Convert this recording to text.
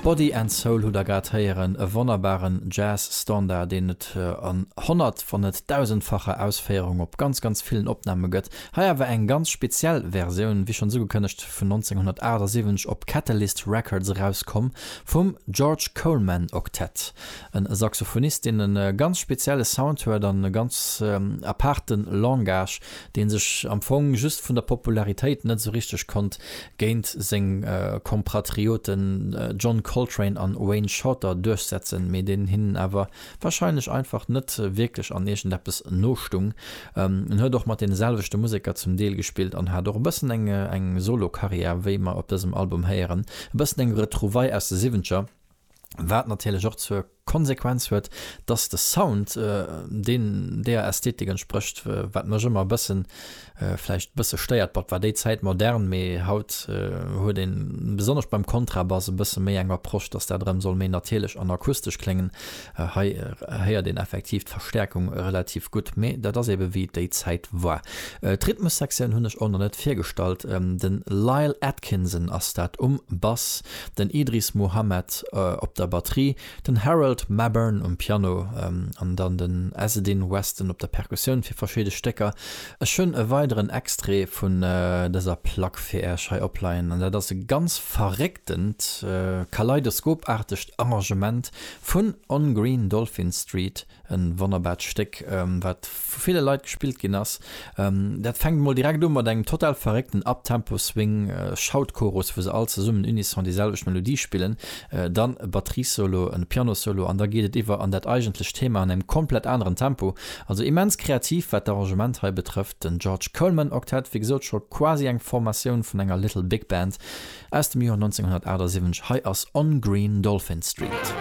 Body and Soul hutt der grad héieren, e wonnerbaren Jazz Standard deen et an honnert wann net dausendfacher Ausféierung op ganz ganz villen Opname gëtt. Hei awer eng ganz speziell Versioun, wéi schonns ugekënnegt vun 1978 op Catalyst Records erauskomm, vum George Coleman Octet, e Saxophonist deen e ganz spezielle Sound huet an e ganz apaarte Langage deen sech am Fong just vun der Popularitéit net esou richteg konnt géint seng Kompratrioten John Coltrane an Wayne Shorter duerchsetzen, mee deen hinnen awer wahrscheinlech einfach net wierklech an iergendeppes nostung. En huet och mat deene selwechte Museker zum Deel gespillt an hat och e bëssen eng Solo-Karriär, wéi mer op dësem Album héieren, e bëssen eng Retrouvaille aus de Siwwentger. Wat natierlech och zur Konsequenz huet, dass de Sound deen deeër Ästhetik entsprécht, wat mech ëmmer e bëssen, vläicht e bësse stéiert. Bot war déi Zäit modern, mee haut huet een, besonnesch beim Kontrabass, e bësse méi eng Approche, dass dat erëm soll méi natierlech an akustesch kléngen. Hei héiert een effektiv d'Verstäerkung relativ gutt, mee dat ass eebe wéi déi Zäit war. D'Rhythmussektioun hunn ech och nach net virgestallt. De Lyle Atkinson ass dat um Bass. den Idris Muhammad op der Batterie, den Harold Mabern um Piano an dann den Ezzedine Weston op der Perkussioun fir verschiede Stécker. Ech hunn e weideren Extrait vun dëser Plack fir Äech hei opleien an dat ass e ganz verrécktent, kaleidoskopaartegt Arrangement vun On Green Dolphin Street. E wonnerbart Stéck, wat vu ville Leit gespillt ginn ass. Dat fänkt emol direkt u mat engem total verréckten Uptempo-Swing-Shout-Chorus, wou se all zesummen unisson déi selwecht Melodie spillen, dann e Batteriessolo, e Pianosolo an da geet et iwwer an dat eigentlecht Thema an engem komplett aneren Tempo. Also immens kreativ, wat d'Arrangement hei betrëfft. Den George Coleman Octet, wéi gesot, scho quasi eng Formatioun vun enger Little Big Band aus dem Joer 1978. Hei ass On Green Dolphin Street.